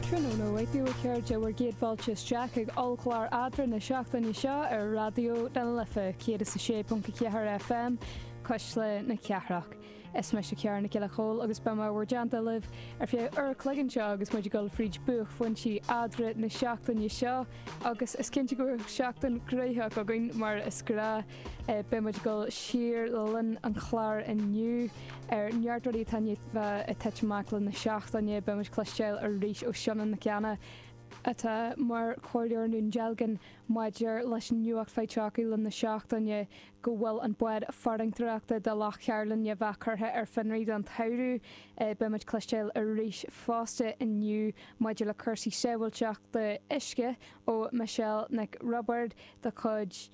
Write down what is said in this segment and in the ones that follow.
Tráthnóna maith daoibh a chairde, bhur gcéad fáilte isteach ag ollchlár Eadrainn na seachtaine seo ar Raidió na Life 106.4 FM, Cuisle na Cathrach. Is mise Ciara Nic Giolla Chomhaill agus beidh mé i bhur dteannta libh ar feadh uair a chloig anseo agus muid ag dul fríd buaicphointí Eadrainn na seachtaine seo, agus is cinnte go bhfuil seachtain gnoitheach againn mar is gnáth! Beidh muid ag dul siar le linn an chláir inniu ar neart rudaí atá i ndiaidh titim amach le linn na seachtaine. Beidh muid ag cloisteáil arís ó Fionnán Mac Cana, atá mar chomhairleoir i nDún Dealgan maidir leis an nuacht faighte le linn na seachtaine go bhfuil an bád farantóireachta do Loch Cairlinne curtha ar fionraí don tsamhradh. Beidh muid ag cloisteáil arís fosta inniu maidir le cúrsaí sábhailteachta uisce ó Michelle Nic Roibeárd de chuid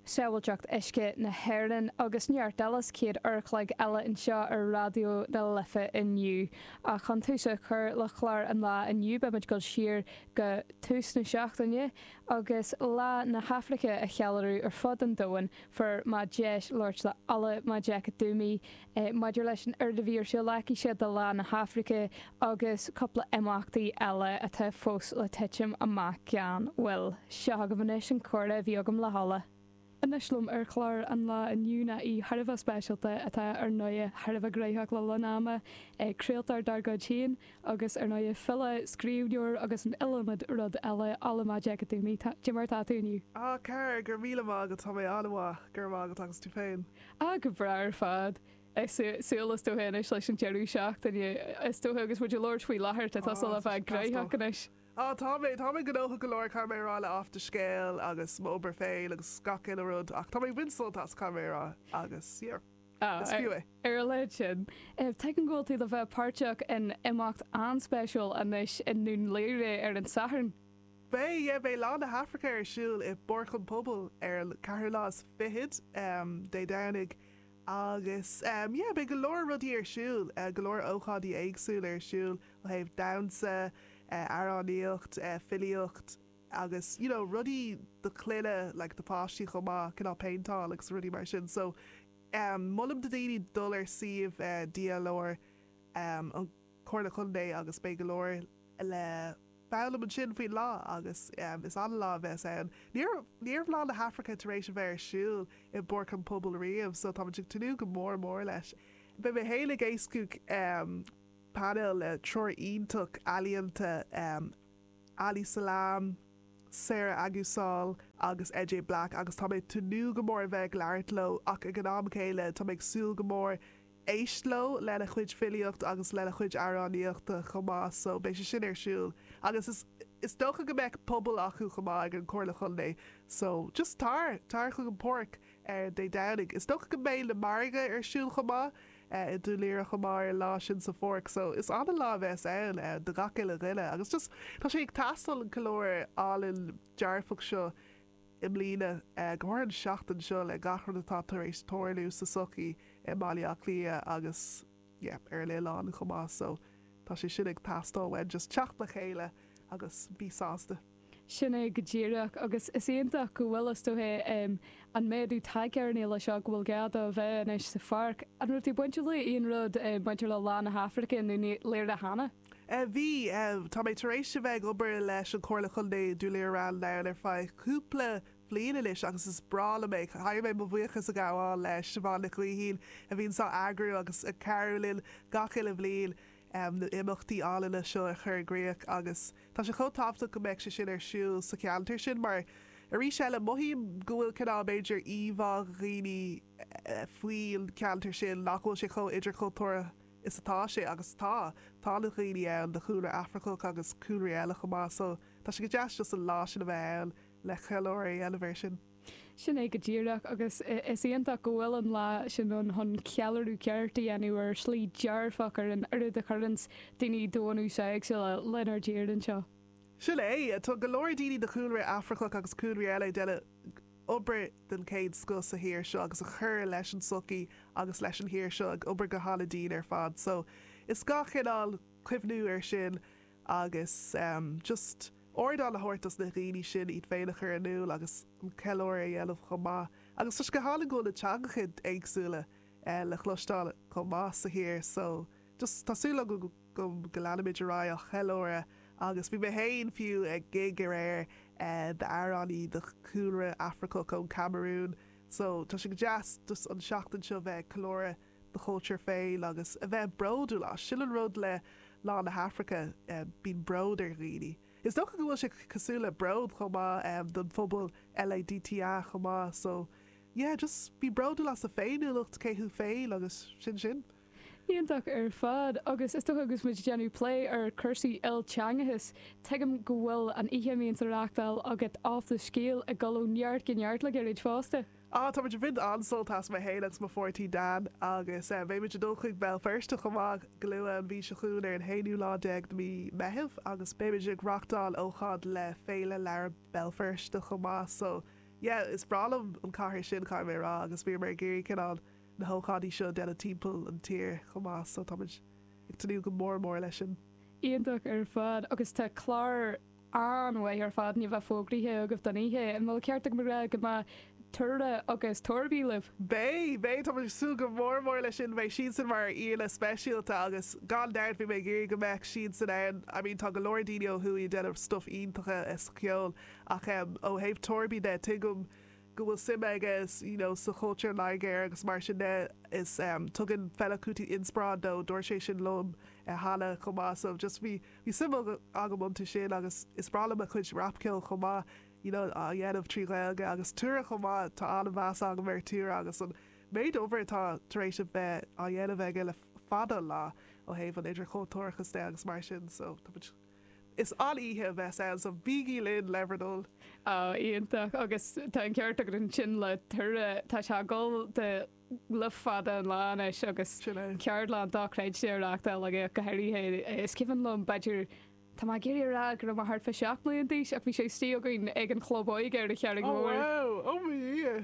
Sábháilteacht Uisce na hÉireann agus neart eile sa chéad uair-a-chloig eile anseo ar Raidió na Life inniu. Ach chun tús a chur le chlár an lá inniu beidh muid ag dul siar go tús na seachtaine agus Lá na hAfraice a cheiliúradh ar fud an domhain. Fuair mé deis labhairt le Ola Majekodunmi, é. Maidir leis an ardú feasachta de Lá na hAfraice agus cúpla imeachtaí eile atá fós le titim amach gan mhoill. Seo agaibh anois an comhrá a bhí agam le hOla. Anois liom ar chlár an lá inniu ná aoi thar a bheith speisialta atá ar ndóigh thar a bheith gnoitheach le linn an ama, craoltóir dár gcuid féin agus ar ndóigh file, scríbhneoir agus an iliomad rud eile Ola Majekodunmi, cad é mar atá tú inniu. Á, Ciara, go raibh míle maith agat, tá mé an-mhaith, go raibh maith agat agus tú féin? Ah, go breá ar fad. Ag súil is dócha anois leis an deireadh seachtaine, is dócha, agus muid ag labhairt faoi láthair tá tusa le bheith gnoitheach anois. Ah, tá mé, tá mé gnóthach go leor, caithfidh mé a rá, le Athscéal agus m'obair féin agus gach uile rud, ach tá mé ag baint sult as, caithfidh mé a rá, agus yeah, Ah, is fiú é. ar a laghad sin, tuigim go bhfuil tú le bheith páirteach in imeacht an-spéisiúil anois i nDún Laoghaire ar an Satharn. Beidh Lá na hAfraice ar siúl i bPáirc an Phobail ar an 24ú Dé Domhnaigh agus yeah beidh go leor rudaí ar siúl, go leor ócáidí éagsúla ar siúl ó thaobh damhsa, amhránaíocht, filíocht agus you know rudaí do chlainne like do pháistí chomh maith, cineál péinteáil agus rudaí mar sin. So molaim do daoine dul ar suíomh DLR an. Comhairle Contae agus beidh go leor le foghlaim ansin faoin lá agus is an-lá a bheas ann. Ní raibh ní raibh Lá na hAfraice tar éis a bheith ar siúl i bPáirc an Phobail riamh so tá mé ag tnúth go mór mór leis. Beidh mé féin ag éascú painéal le triúr iontach ealaíonta Ali Selam, Sarah Aguisul agus DJ Black agus tá mé ag tnúth go mór a bheith ag labhairt leo ach ag an am céanna tá mé ag súil go mór Éist leo, lena chuid filíocht agus lena chuid amhránaíochta chomh maith so beidh sé sin ar siúl agus is is dócha go mbeadh puball acu chomh maith ag an Comhairle Chontae so just tar! Tar chuig an Páirc ar Dé Domhnaigh. Is dócha go mbeidh na margaí ar siúl chomh maith i Dún Laoghaire chomh maith ar an lá sin sa Pháirc so is an-lá a bheas ann do gach uile dhuine agus just tá sé ag teastáil an ceiliúradh álainn dearfach seo i mbliana. Go háirithe an seachtain seo le gach rud atá tar éis tarlú sa sochaí i mBaile Átha Cliath agus yeah ar an oileán chomh maith so tá sé sin ag teastáil uainn just teacht le chéile agus bí sásta. Sin é go díreach agus is iontach go bhfuil is dóigh em an méadú tagtha ar an fhéile seo go bhfuil gá dó a bheith anois sa pháirc. An raibh tú bainteach le aon rud em bainteach le Lá na hAfraice i nDún Laoghaire cheana? Bhí. Tá mé tar éis a bheith ag obair leis an Chomhairle Chontae i nDún Laoghaire-Ráth an Dúin ar feadh cúpla bhliain anois agus is breá liom é. Caithfidh mé mo bhuíochas a ghabháil le Siobhán Nic Gaoithín a bhíonns á eagrú agus ag cabhrú linn gach uile bhliain na himeachtaí álainne seo a chur i gcríoch agus tá sé chomh tábhachtach go mbeadh sé sin ar siúl sa cheantar sin mar arís eile mothaím go bhfuil cineál b'fhéidir íomhá ag dhaoine faoin cheantar sin nach bhfuil sé chomh idirchultúrtha is atá sé, agus tá. Tá na dhaoine ann de chúlra Afracach agus cúlraí eile chomh maith, so tá sé go deas just an lá sin a bheith ann le ceiliúradh a dhéanamh air sin. Sin é go díreach, agus is iontach go bhfuil an lá sin ann chun ceiliúradh ceart a dhéanamh ar shlí dearfach ar an oiread a chuireanns daoine de bhunús éagsúla lenár dtír anseo. Sin é, tá go leor daoine de chúlra Afracach agus cúlraí eile ag déanamh. obair den chéad scoth sa thír seo agus ag cur leis an tsochaí agus leis an thír seo ag obair go han-a dian ar fad so is gá chineál cuimhniú ar sin agus em just ardán a thabhairt dos na dhaoine sin iad féin a chur in iúl agus an ceiliúradh a dhéanamh chomh maith agus tá sé go hálainn go bhfuil na teangacha éagsúla eh le chloisteáil chomh maith sa thír so Tá súil agam go leanfaimid ar aghaidh á cheiliúradh agus bhí mé féin, fiú, ag gig aréir d'amhránaí de chúlra Afracach ón Camarún so tá sé go deas just an seachtain seo bheith ag ceiliúradh do chultúr féin agus a bheith bródúil as. Sin an rud le Lá na hAfraice, bíonn bród ar dhaoine. Is dócha go bhfuil sé cosúil le bród chomh maith don phobal LADTA chomh maith so yeah just bí bródúil as do féiniúlacht, cé thú féin agus sin sin. Iontach ar fad. Agus is dócha agus muid ag déanamh plé ar cúrsaí ilteangachais, tuigim go bhfuil an oíche a mbíonns á reachtáil agat Off the Scéal ag dul ó neart go neart le gairid fosta. Á, tá muid ag baint an-sult as, mé fhéin agus mo pháirtí Dan, agus beidh muid ag dul chuig Béal Feirste chomh maith go luath an mhí seo chugainn ar an haonú lá déag de mhí Meitheamh agus beidh muid ag reachtáil ócáid le Féile Leabhar Béal Feirste chomh maith so yeah, is breá liom an cathair sin, caithfidh mé a rá agus bhíomar ag iarraidh cineál. na hócáidí seo a dhéanamh timpeall an tír chomh maith so táimid ag tnúth go mór mór leis sin. Iontach ar fad agus tá clár an-mhaith ar fad i ndiaidh a bheith fógraithe agaibh don oíche, an bhfuil ceart agam a rá go mbeidh Tura agus Torby libh? Beidh, beidh, táimid ag súil go mór mór leis sin, beidh siadsan mar aíonna speisialta agus gan dabht bhí mé ag iarraidh go mbeadh siadsan ann, I mean tá go leor daoine ó thuaidh ag déanamh stuff iontacha sa cheol ach em ó thaobh Torby de tuigim go bhfuil suim aige you know sa chultúr Nigéir agus mar sin de is em tugann Fela Kuti inspioráid dó, dúirt sé sin liom eh cheana chomh maith so just bhí bhí suim agam agam iontu sin agus is breá liom a chuid rapcheoil chomh maith you know á dhéanamh trí Ghaeilge agus Tura chomh maith tá an-mheas agam ar Tura agus an méid obair atá tar éis a bheith á dhéanamh aige le fada an lá ó thaobh an idirchultúrachas de agus mar sin so tá muid Is an-oíche a bheas ann so bígí linn le bhur dtoil! Oh, iontach! Agus tá an ceart agat ansin le Tura, tá sé ag dul de le fada an lá anois agus Sin é. ceardlanna dochreidte á reachtáil aige ach go háirithe. Is cuimhin liom, b'fhéidir, tá mé ag iarraidh a rá go raibh mé thart fá seacht mbliana d'aois ach bhí sé istigh againn ag an chlub óige ar an Charraig Oh Mhór wow! Oh mo dhia!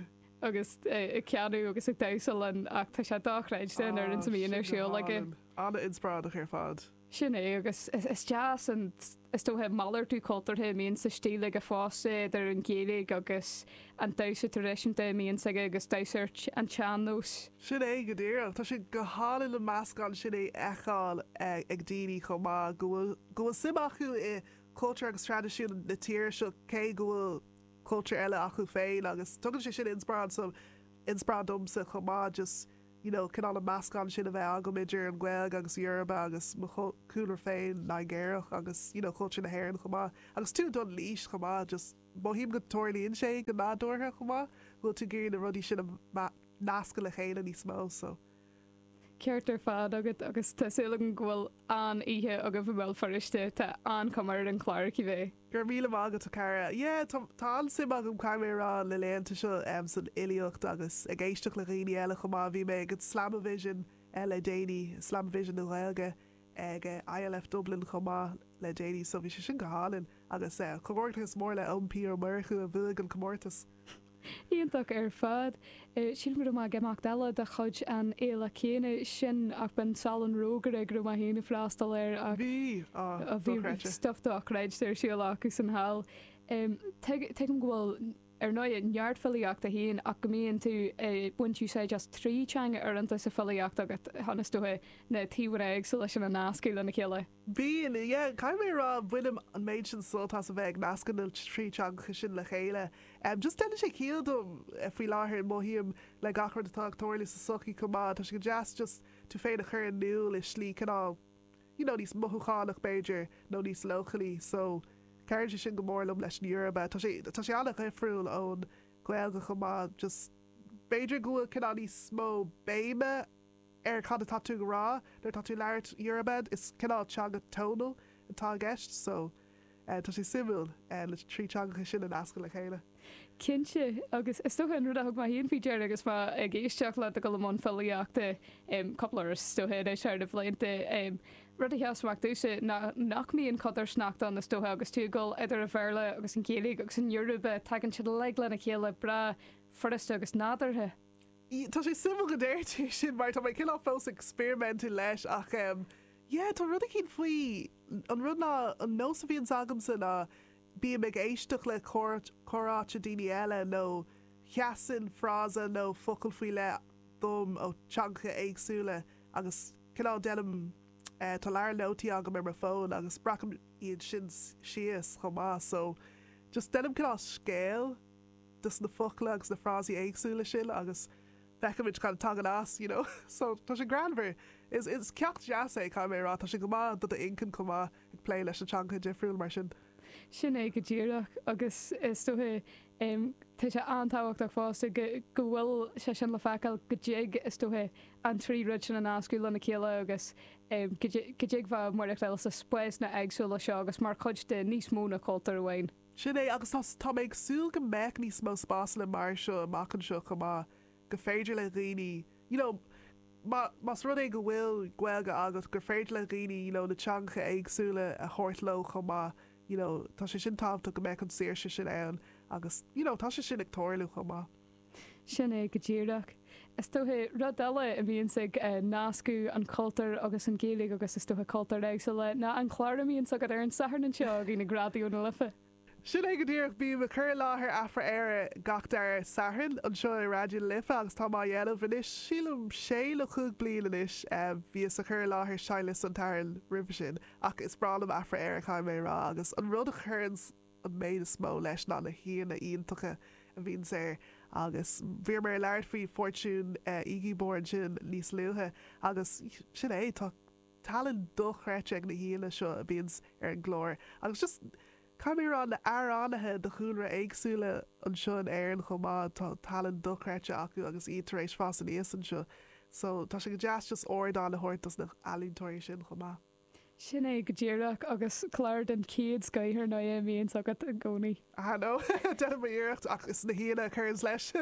agus é ag canadh agus ag damhsa linn ach tá sé dochreidte an réimse a mbíonn ar siúl aige. An-inspioráideach ar fad. Sin é, agus is deas an, is dócha, malartú cultúrtha a mbíonn sa stíl aige fosta, idir an Ghaeilge agus an damhsa traidisiúnta a mbíonns aige agus damhsa ar an tsean-nós. Sin é, go díreach. Tá sé go hálainn an meascán sin a fheiceáil ag daoine chomh maith, go bhfuil, go bhfuil suim acu i gcultúr agus traidisiún na tíre seo cé go bhfuil cultúr eile acu féin agus tugann sé sin inspioráid, inspioráid domsa chomh maith just. you know cineál an meascán sin a bheith agam idir an Ghaeilge agus Yoruba agus mo chúlra féin Nigéarach agus you know cultúr na hÉireann chomh maith agus tú ag dul in aois chomh maith just mothaím go dtarlaíonn sé go nádúrtha chomh maith go bhfuil tú ag iarraidh na rudaí sin a nascadh le chéile níos mó so Ceart ar fad agat agus tá súil agam go bhfuil an-oíche agaibh i mBéal Feirste, tá an-chuma ar an chlár cibé. Go raibh míle maith agat a chara. Yeah, tá, tá an-suim agam caithfidh mé a rá na laethanta seo em san fhilíocht agus ag éisteacht le dhaoine eile chomh maith. Bhí mé ag an Slamavision eh le déanaí, Slamavision na Gaeilge ag eh ILF Dublin chomh maith le déanaí so bhí sé sin go hálainn agus eh comhghairdeachas mór le Eoin P Ó Murchú a bhuaigh an comórtas. Iontach ar fad. Sílim go raibh mé ag imeacht eile de chuid an fhéile chéanna sin ach b'in Salon Rógaire go raibh mé féin ag freastal air ach Bhí! Á, bhí dochreidte. stuff dochreidte ar siúl acusan thall. Tuigim go bhfuil, ar ndóigh, neart filíochta féin ach go mbíonn tú ag baint úsáid as trí teanga uaireanta sa filíocht agat chun, is dócha, na taobhanna éagsúla sin a nascadh lena chéile. Bíonn, yeah, caithfidh mé a rá, bainim an méid sin sult as a bheith ag nascadh na trí teangacha sin le chéile. Em, just deineann sé ciall dom faoi láthair, mothaím, le gach rud atá ag tarlú sa sochaí chomh maith, tá sé go deas just tú féin a chur in iúl i slí cineál, you know, níos mothúchánach b'fhéidir, nó níos leochailí. So, cabhraíonn sé sin go mór liom leis an Yoruba. Tá sé, tá sé an-dhifriúil ón nGaeilge chomh maith, just b'fhéidir go bhfuil cineál níos mó béime, ar cad atá tú ag rá nuair atá tú ag labhairt Yoruba, is cineál teanga tonal atá i gceist so tá sé suimiúil na trí teangacha sin a nascadh le chéile. Cinnte, agus is dócha an rud a thug mé féin faoi deara agus mé ag éisteacht leat ag dul i mbun filíochta, cúpla uair is dócha anois thar na blianta, rud a sheas amach domhsa ná nach mbíonn codarsnacht ann is dócha agus tú ag dul idir an Bhéarla agus an Ghaeilge agus an Yoruba, tagann siad uilig lena chéile breá furasta agus nádúrtha. yeah tá sé suimiúil go ndeir tú sin mar tá mé cineál fós ag experimentú leis ach em yeah tá rud eicínt faoi an rud ná an nós a bhíonns agamsa ná bím ag éisteacht le comhráite daoine eile nó seasann frása nó focal faoi leith dom ó teangacha éagsúla agus cineál déanaim eh tá leabhar nótaí agam ar mo fón agus breacaim iad sin síos chomh maith so just déanaim cineál scéal de na focla agus na frásaí éagsúla sin agus feicimid cad a tagann as you know so tá sé greannmhar is is ceacht deas é caithfidh mé a rá tá sé go maith do do inchinn chomh maith ag plé leis na teangacha difriúla mar sin. Sin é go díreach agus is dóiche em tá sé an-tábhachtach fosta go go bhfuil sé sin le feiceáil go dtig is dóiche an trí rud sin a nascadh lena chéile agus em go dtig go dtig bheith i measc daoine eile sna spásanna éagsúla seo agus mar chuid de níos mó ná cultúr amháin. Sin é, agus tá tá mé ag súil go mbeadh níos mó spásanna mar seo amach anseo chomh maith, go féidir le dhaoine, you know má más rud é go bhfuil Gaeilge agat, gur féidir le dhaoine, you know na teangacha éagsúla a thabhairt leo chomh maith, you know tá sé sin tábhachtach go mbeadh an saoirse sin ann agus, you know tá sé sin ag tarlú chomh maith. Sin é go díreach. Is dócha, rud eile a bhíonns ag nascadh an cultúr agus an Ghaeilge, agus is dócha cultúir éagsúla, ná an clár a mbíonns agat ar an Satharn anseo againn ag Raidió na Life. Sin é go díreach. Bím ag cur i láthair Afra-Éire gach dara Satharn anseo i Raidió na Life agus táim á dhéanamh anois, sílim, sé nó cúig bliain anois. Bhíos ag cur i láthair Seinnliosta an tSathairn roimhe sin, ach is breá liom Afra-Éire, caithfidh mé a rá, agus an rud a chuireanns. an méid is mó leis ná na haíonna iontacha a bhíonns air, agus bhíomar ag labhairt faoi Fortune Igiebor ansin níos luaithe, agus sin é, tá tallann dochreidte ag na haíonna seo a bhíonns ar an gclár, agus just, caithfidh mé a rá, na amhránaithe de chúlra éagsúla anseo in Éirinn chomh maith, tá tallann dochreidte acu agus iad tar éis fás aníos anseo, so tá sé go deas just ardán a thabhairt dos na healaíontóirí sin chomh maith. Sin é go díreach, agus clár den chéad scoith ar ndóigh a mbíonns agat i gcónaí. Ah no, déanaim m'iarracht, ach is na haíonna a chuireanns leis.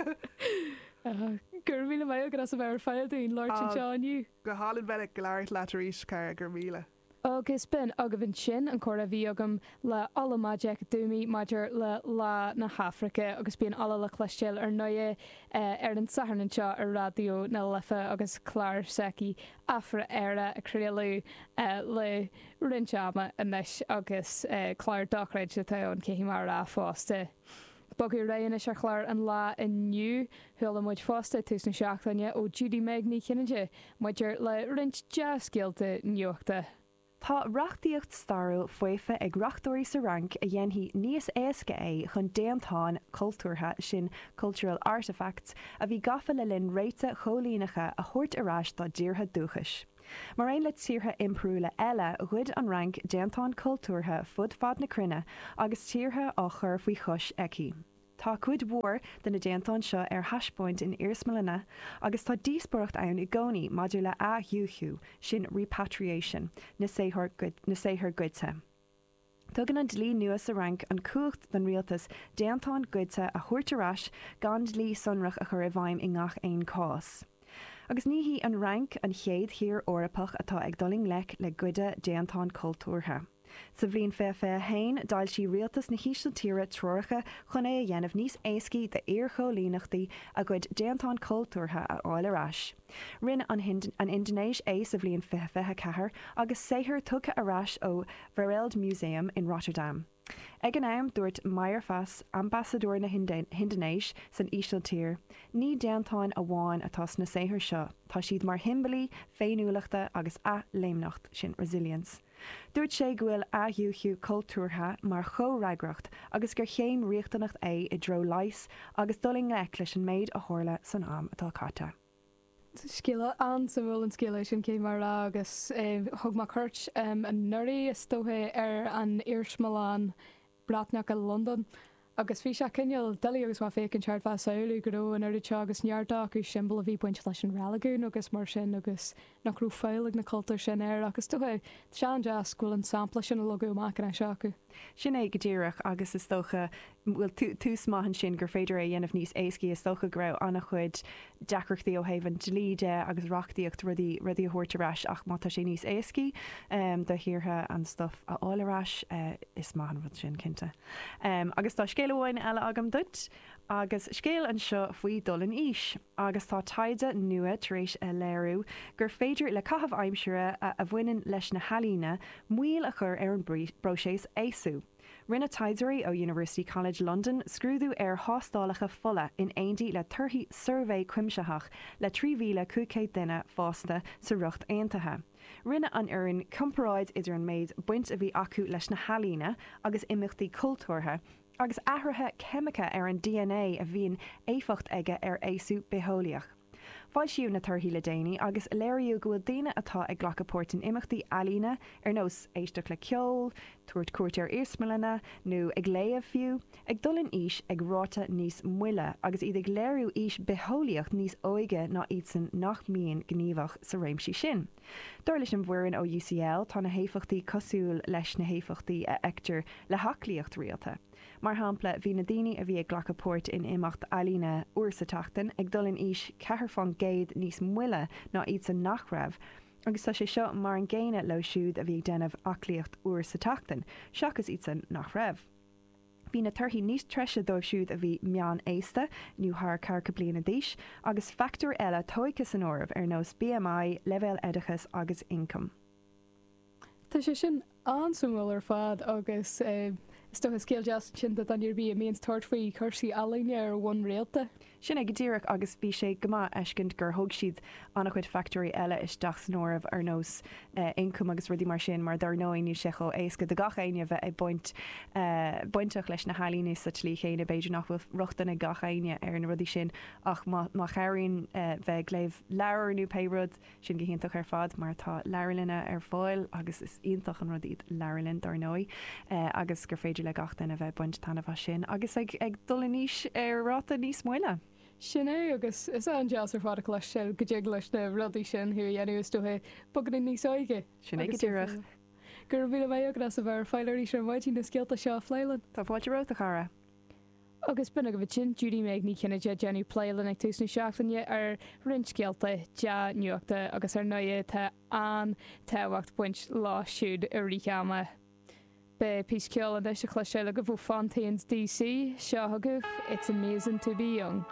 Ah, go raibh míle maith agat as a bheith ar fáil dúinn labhairt anseo inniu. Go hálainn bheith ag labhairt leat arís, a chara, go raibh míle. Agus b'in agaibh ansin an comhrá a bhí agam le Ola Majekodunmi maidir le Lá na hAfraice, agus bíonn Ola le cloistéáil ar ndóigh ar an Satharn anseo ar Raidió na Life agus clár s'aici Afra Éire á chraoladh le roinnt ama anois agus clár dochreidte atá ann, caithfidh mé a rá fosta. Bogadh ar aghaidh anois ar chlár an lae inniu. Chuala muid fosta ag tús na seachtaine ó Judy-Meg Ní Chinnéide maidir le roinnt dea-scéalta nuachta. Tá reachtaíocht stairiúil faofa ag reachtóirí sa Fhrainc a dhéanfaidh níos éasca é chun déantáin chultúrtha, sin cultural artefacts, a bhí gafa le linn réanna coilíneacha a thabhairt ar ais dá dtíortha dúchais. Mar aon le tíortha impiriúla eile, ghoid an Fhrainc déantáin chultúrtha fud fad na cruinne agus tíortha á gcur faoi chois aici. Tá cuid mhór de na déantáin seo ar taispeáint in iarsmalanna agus tá díospóireacht ann i gcónaí maidir le athdhúichiú, sin repatriation, na saothar goidte. Tugann an dlí nua sa Fhrainc an chumhacht don rialtas déantáin goidte a thabhairt ar ais gan dlí sonrach a chur i bhfeidhm i ngach aon chás. Agus ní hí an Fhrainc an chéad thír Eorpach atá ag dul i ngleic le goid déantán cultúrtha. Sa bhliain 2021, d'fhoilsigh rialtas na hÍsiltíre treoracha chun é a dhéanamh níos éascaí d'iarchoilíneachtaí a gcuid déantán cultúrtha a fháil ar ais. Rinne an Indinéis é sa bhliain 2024, agus saothair tugtha ar ais ó Wereldmuseum in Rotterdam. Ag an am, dúirt Mayerfas, Ambasadóir na hIndinéis san Ísiltír, Ní déantáin amháin atá sna saothair seo, tá siad mar shiombailí féiniúlachta agus athléimneachta, sin resilience. Dúirt sé go bhfuil athdhúichiú cultúrtha mar chomhfhreagracht agus gur céim riachtanach é i dtreo leighis agus dul i ngleic leis an méid a tharla san am atá caite. Scéal an-suimiúil an scéal é sin, caithfidh mé a rá, agus thug mé cuairt anuraidh, is dócha, ar an iarsmalann Bhriotanach i Londain, agus bhí sé cineál doiligh agus mé ag féachaint thart á shamhlú go raibh an oiread seo agus neart acu siombailí a bhí baint leis an reiligiún agus mar sin, agus. nach raibh fáil ag na cultúir sin air ach is dócha, tá sé an-deas, go bhfuil an sampla sin á leagadh amach anois acu. Sin é go díreach agus is dócha, bhuel tús maith ansin gur féidir é a dhéanamh níos éascaí, is dócha go raibh an-chuid deacrachtaí ó thaobh an dlí de agus reachtaíocht rudaí rudaí a thabhairt ar ais ach má tá sé níos éascaí do thíortha an stuif a fháil ar ais, is maith an rud sin cinnte. Agus tá scéal amháin eile agam duit. Agus scéal anseo faoi dul in aois, agus tá taighde nua tar éis a léiriú gur féidir le caithimh aimsire a bhaineann leis na healaíona moill a chur ar an bpróiseas aosú. Rinne taighdeoirí ó University College London scrúdú ar thástálacha fola in éindí le torthaí suirbhé cuimsitheach le 3,500 duine fásta sa Ríocht Aontaithe. Rinne an fhoireann comparáid idir an méid baint a bhí acu leis na healaíona agus imeachtaí cultúrtha, agus athruithe ceimiceacha ar an dna a bhíonn éifeacht aige ar aosú bitheolaíoch. Foilsíodh na torthaí le déanaí agus léiríodh go bhfuil daoine atá ag glacadh páirt in imeachtaí ealaíne, ar nós éisteacht le ceol, tabhairt cuairt ar iarsmalanna, nó ag léamh fiú, ag dul in aois ag ráta níos moille, agus iad ag léiriú aois bitheolaíoch níos óige ná iadsan nach mbíonn gníomhach sa réimsí sin. Dar leis an bhfoireann ó UCL, tá na héifeachtaí cosúil leis na héifeachtaí a fheictear le haclaíocht rialta. Mar shampla, bhí na daoine a bhí ag glacadh páirt in imeacht ealaíne uair sa tseachtain ag dul in aois ceathair faoin gcéad níos moille ná iadsan nach raibh, agus tá sé seo mar an gcéanna leo siúd a bhí ag déanamh aclaíocht uair sa tseachtain, seachas iadsan nach raibh. Bhí na torthaí níos treise dóibh siúd a bhí meán-aosta, nó thar ceathracha bliana d'aois, agus fachtóirí eile tóigthe san áireamh, ar nós BMI, leibhéal oideachas agus ioncam. Tá sé sin an-suimiúil ar fad, agus is dócha scéal deas ansin do dhuine ar bith a bhíonns ag tabhairt faoi chúrsaí ealaíne ar bhonn rialta. Sin é go díreach, agus bhí sé go maith fheiscint gur thóg siad an-chuid fachtóirí eile isteach san áireamh, ar nós ioncam agus rudaí mar sin, mar dár ndóigh níl sé chomh éasca do gach éinne bheith ag baint bainteach leis na healaíona sa tslí chéanna b'fhéidir nach bhfuil rochtain ag gach éinne ar na rudaí sin ach má chabhraíonn bheith ag léamh leabhar nó pé rud Sin go hiontach ar fad mar tá leabharlanna ar fáil, agus is iontach an rud í an leabharlann dár ndóigh, agus gur féidir le gach duine bheith baint taitneamh as sin agus ag dul in aois ar ráta níos moille. Sin é, agus is an-deas ar fad a chluinstin go dtig leis na rudaí sin thú a dhéanamh, is dóiche, beagán níos óige. Sin é go díreach. Go raibh míle maith agat as a bheith ar fáil arís ar maidin, na scéalta seo a phlé linn. Tá fáilte romhat, a chara. Agus b'in agaibh ansin Judy Meg Ní Chinnéide ag déanamh plé linn ag tús na seachtaine ar roinnt scéalta dea-nuachta agus ar ndóigh tá an-tábhacht baint leo siúd i rith an ama. Beidh píosa ceoil anois a chloisteáil agaibh ó Fontaines D.C. Seo agaibh It's Amazin' To Be Young.